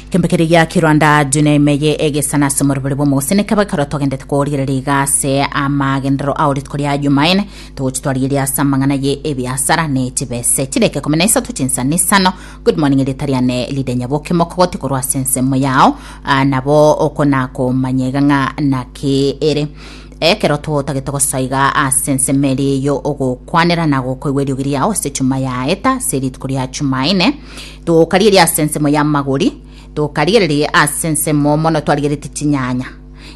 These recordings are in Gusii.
kembe kere gia kirwanda june emeye egesana ase omorobori bw'omogosene kaba ekero togendete korigereria iga ase amagenderero ao rituko ria jumaene togochi twarigeria ase amang'ana ye ebiasara ne chibese chireke kumi na isato chinsani isano good morning erita riane lide nyaboke mokogoti korwa ase ensemo yao ah, nabo okona komanya iga ng'a naki ere Ekero totagete gosaiga ase ensemo eria eyio ogokwanera na gokoigwa eriogi riao ase chuma ya eta ase rituko ria Chumaine, tokarigeria ase ensemo y'amagori, tokarigereria ase ensemo mono twarigeretie chinyanya,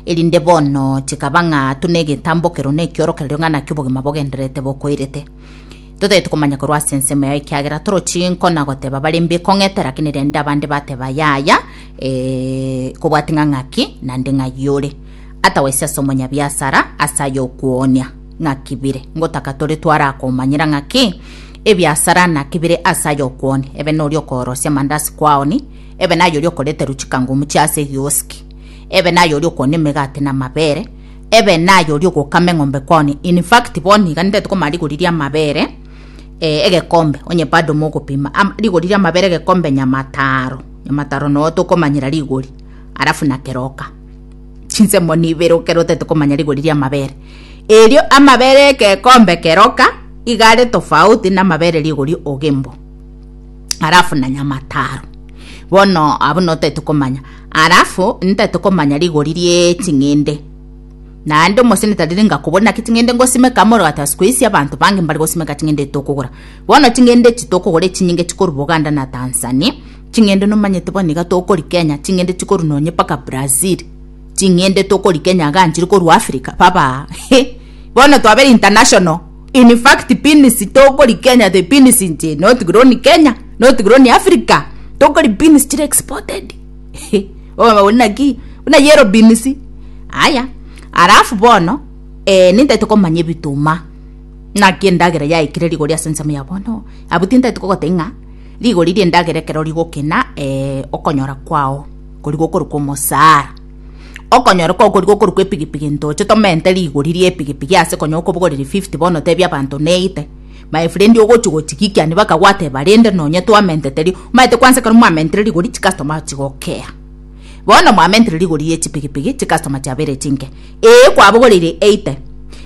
erinde bono chikaba ng'a tuna egetambokero na ekiorokererio ng'a naki obogima bogendererete bokoirete. Totagete komanya korwa ase ensemo yao ekiagera toro chinko na goteba bare mbe ekong'ete lakini rende abande bateba yaya, ee, kobwati ng'a ng'aki, nande ng'ai ore. Atawesi ase omonyabiasara ase ay'okwooonia ng'aki bire, ngotaka tore twarakomanyera ng'aki ebiasara naki bire ase ay'okwooni, ebe noria okoorosia amandasi kwaoni, ebe nayoria okoreterwa chikangumu chia ase egioski, ebe nayoria okoonia emegati na amabere, ebe nayoria ogokama eng'ombe kwaoni, in fact bono iga nindete komanya rigori ria amabere eh, egekombe onye bado mogopima am rigori ria amabere egekombe nyamataro, nyamataro noo tokomanyera rigori, alafu na keroka. chinsemo nibere okere otete komanya rigori ria amabere erio amabere ekekombe keroka igare tofauti na amabere rigori ogembo arafu na nyama taro bono abo notete komanya arafu ntete komanya rigori rie ching'ende naende omoseneta riri ngakobona ki ching'ende ngosimeka amoro gata siku isi abanto bange mbare gosimeka ching'ende tokogora bono ching'ende chitokogora echinyinge chikorwa boganda na tanzania Ching'ende nomanyete bono iga tokorikenya ching'ende chikorwa nonye mpaka Brazil ching'ende tokorikenya iga nchiri korwa Africa baba he bono twabere international in fact beans tokorikenya the beans nche not grown Kenya not grown Africa tokori beans chire exported he bono ori naki buna yellow beans aya alafu bono eh, nintaete komanya ebituma naki endagera yaikire rigori ase ensemo ya bono abwo tintaete kogoteba ng'a Rigori ri'endagera ekero rigokena, ee, okonyora kwao kori gokorokwa omosaara. Okonyora kwao kori gokorokwa epigipigi ntoche tomente rigori ri'epigipigi ase konya okobogoreria fifty bono otebie abanto neite, my friend ogochia gochigikia ni bakagwateba rende nonye twamentete ri, omanyete kwansa ekero mwamentire rigori chicustomer chigokea. Bono mwamentire rigori ri'echipigipigi chicustomer chiabeire chinke, ee kwabogoreirie eighty,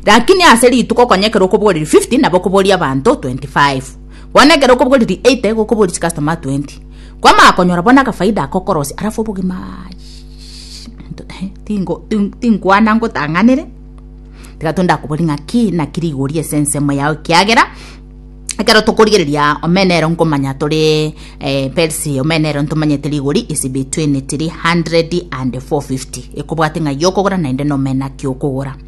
rakini ase rituko konya ekero okobogoreria fifty nabo okoboria abanto twenty five. Bono ekero okobugwa riri 80 igo okobua risikastoma 20 kwamanya konyora bono akafaida ako okorosia alafu obogima tinkwana ngotang'anere tiga tonde akobori ng'a ki naki rigori ase ensemo yao ekiagera ekero tokorigereria omena ero nkomanya tore perisi omena ero ntomanyete rigori is between 300 and 450 ekobwate ng'ai okogora naende nomena ki okogora.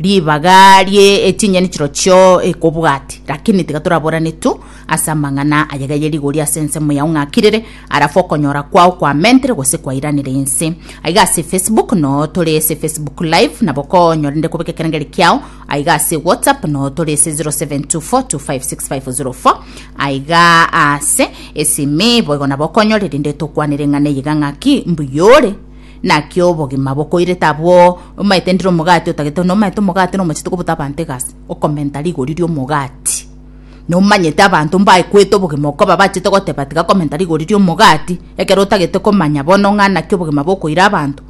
ribaga rie echinyeni chirochio ekobwati lakini tiga toraborane tu ase amang'ana ayega ye rigori ase ensemo yao ng'akirire arafu okonyora kwao kwamentere gose kwairanire inse aiga ase facebook no tore ase facebook live nabo konyorende kobeka ekerengeri kiao aiga ase whatsapp no tore ase 0724256504 aiga ase esimi boigo nabo okonyorerinde tokwanire ng'ana eyiga ng'aki mbuyore Naki obogima bokoirete abwo omaete ndire omogati otagete, nomaete omogati na omochie tokobota abanto egasi, okomenta rigori ri'omogati. Nomanyete abanto mbaekwete obogima okoba bachete goteba tiga komenta rigori ri'omogati, ekero otagete komanya bono ng'a naki obogima bokoira abanto?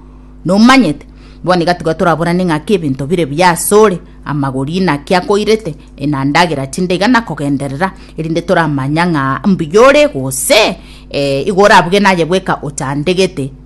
Nomanyete? Bono iga tiga toraburane ng'aki ebinto bire buya asore, amagori inaki akoirete, enandagera chinde iga nakogenderera, erinde toramanya ng'a mbuya ore gose ee igo orabuge naye bweka ochandegete.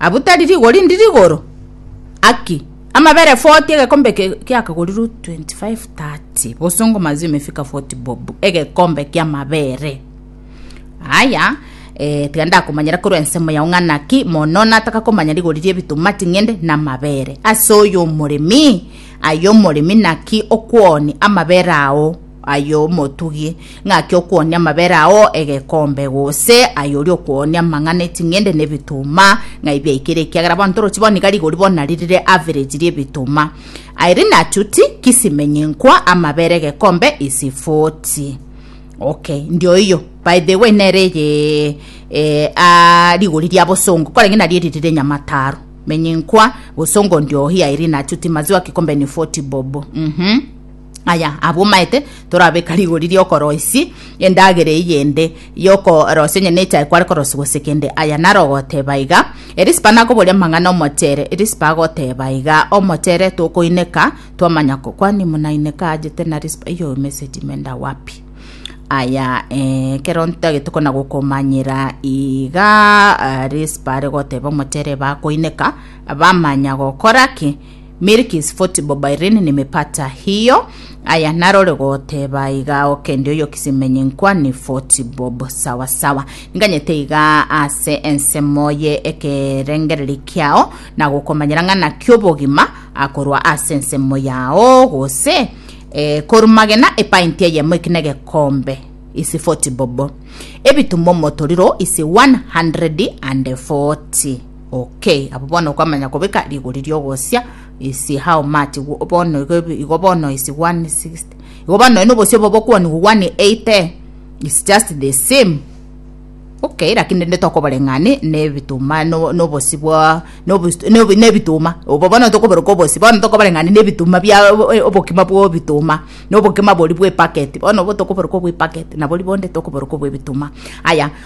Abu tari rigori ndi rigoro aki amabere 40 egekombe giakagorirwe 25 30 bosongo mazi imefika 40 bob egekombe kia mabere aya eh, tiga ndakomanyera korwa ensemo yao ng'ana ki mono nataka komanya rigori rie ebituma ting'ende na mabere ase oyo omoremi ayo omoremi naki okwoni amabere ao aye omotugi, ng'aki okwonia amabere ao egekombe, gose aye oria okwonia amang'ana eting'ende na ebituma, ng'ai biaikire ekiagera bono torochi bono iga rigori bono nari rire average ri'ebituma. Aye rinachuti kisimenyi nkwa amabere egekombe isi foti. Okay, ndioiyo. By the way, nere eye eh, ah, rigori ria bosongo, korenge nari eri rire nyamataro. Menyi nkwa, bosongo ndiohi, aye rinachuti maziwa kikombe ni foti bobo. Mhm. Aya abomaete torabeka rigori ri'okoroisia endagera eyende y'okorosia onye nechae kware korosia gose kende. Aya naro ogoteba iga, Erisipa nakoboria amang'ana omochere. Erisipa agoteba iga, Omochere tokoineka twamanya ko kwani munaineka ajete na risipa iyo emeseti menda wapi? aya eh, ekero ntagete kona gokomanyera iga ah, risipa are goteba omochere bakoineka bamanya gokora ki Milk is football by Rin Nimepata hiyo aya narore goteba iga okende oyo kisimenye nkwa ni footbob sawa sawa nganyete iga ase ensemo ye ekerengereri kiao na gokomanyera ng'ana kiobogima akorwa ase ensemo yao gose eh, korumagena epainti eyemo ekina egekombe isi footbob ebitumo motoriro isi 140 Okay, abo bono okomanya kobeka rigori riogosia isi how much Igo bono igo ebi- igo bono isi 160 igo bono noe nobosia obo bokwanigwa 180 it's just the same okay lakini rende tokoboreng'ani nebituma no- nobosi bwa nobos- nobi- nebituma obo bono tokoberoka obosi bono tokobareng'ani nebituma bia o- o- obokima bwa ebituma na obokima boria bwa epacket bono obo tokoberoka obwa epacket nabori bonde tokoberoka obwa ebituma aya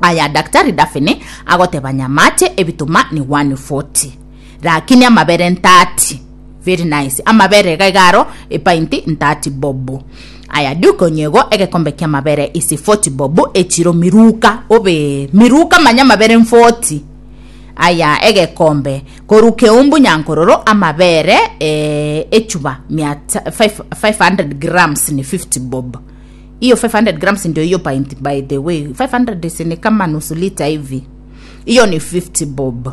Aya Daktari Daphne agoteba nyamache ebituma ni 140 rakini amabere 30 very nice amabere iga iga aro epainti 30 bob aya Duke Onyego egekombe kia mabere isi 40 bob echiro miruka obe miruka manya mabere 40 aya egekombe koru keumbu nyankororo amabere eh, echuba 500 grams ni 50 bob Hiyo 500 grams ndio hiyo pint by the way. 500 si ni kama nusu lita hivi. Hiyo ni 50 bob.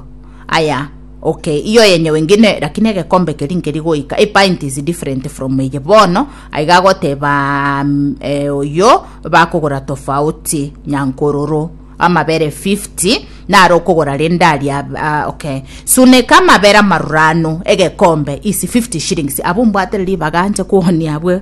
Aya, okay. Hiyo yenye wengine lakini egekombe keri nkeri goika. A pint is different from eye. Bono aiga goteba mm, eh, oyo bakogora tofauti nyankororo amabere 50 naro okogora rende ari ab- ah, okay suneka amabere amarurano egekombe isi 50 shillings abo mbwate ribaga nche kuonia abwe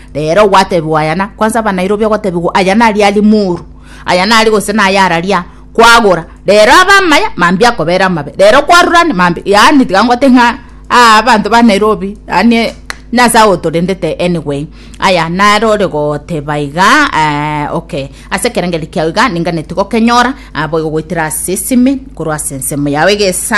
Reero gwatebiwa aya, na kwansa ba Nairobi ogotebigwa aya naria ari moru, aya nari gose naya araria kwagora. Reero abe amaya, mambia akobera amabe. Reero kwarurane, mambia, yaani tiga ngote ng'a aa abanto ba Nairobi, yaani nase agwo torendete anyway. Aya nare ore goteba iga, eh, okay. Ase ekerengeri kiao iga ninganetie gokenyora, ah, boigo goitera ase esime, korwa ase ensemo yao egesa.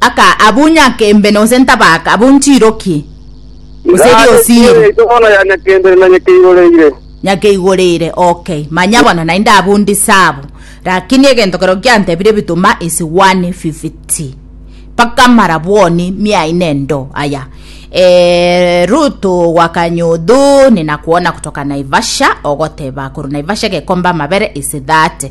Aka, Abwo nyake mbe nonse ntabaka, abwo nchirokie, gose Iga ase chiira riosiiri. yaito bono ya nyakendere na nyakeigoreire. Nyakeigoreire, ok, manya bono naende abwo ndisabo. Rakini egento keroo kiantebire ebituma ase 150 mpaka marabwoni miaino endo aya. Eeh, Ruto gwa Kanyodho, ninakwoona gotoka Naivasha, ogoteba korwa Naivasha gekomba amabere ase 30.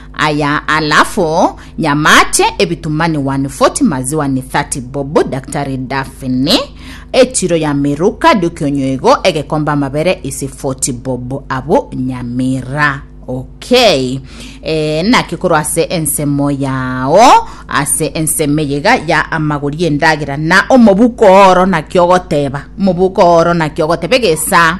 Aya alafu nyamache ebitumani wani foti maziwa ni thati bobu daktari dafini echiro ya miruka diokionyoigo egekombe amabere isi foti bobu abu nyamira okay e, naki korwa ase ensemo yao ase ensemo eyega ya amagori endagera na omobuko oro naki ogoteba omobuko oro naki ogoteba egesa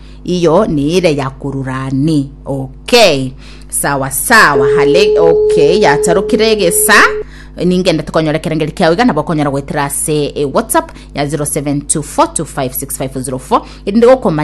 iyo niire ya korurani okay sawa sawa hale okay yatarokire egesa ningende tokonyora ekerengeri kiao iga nabo okonyora goetera ase e whatsapp ya 0724256504 erinde gokomanya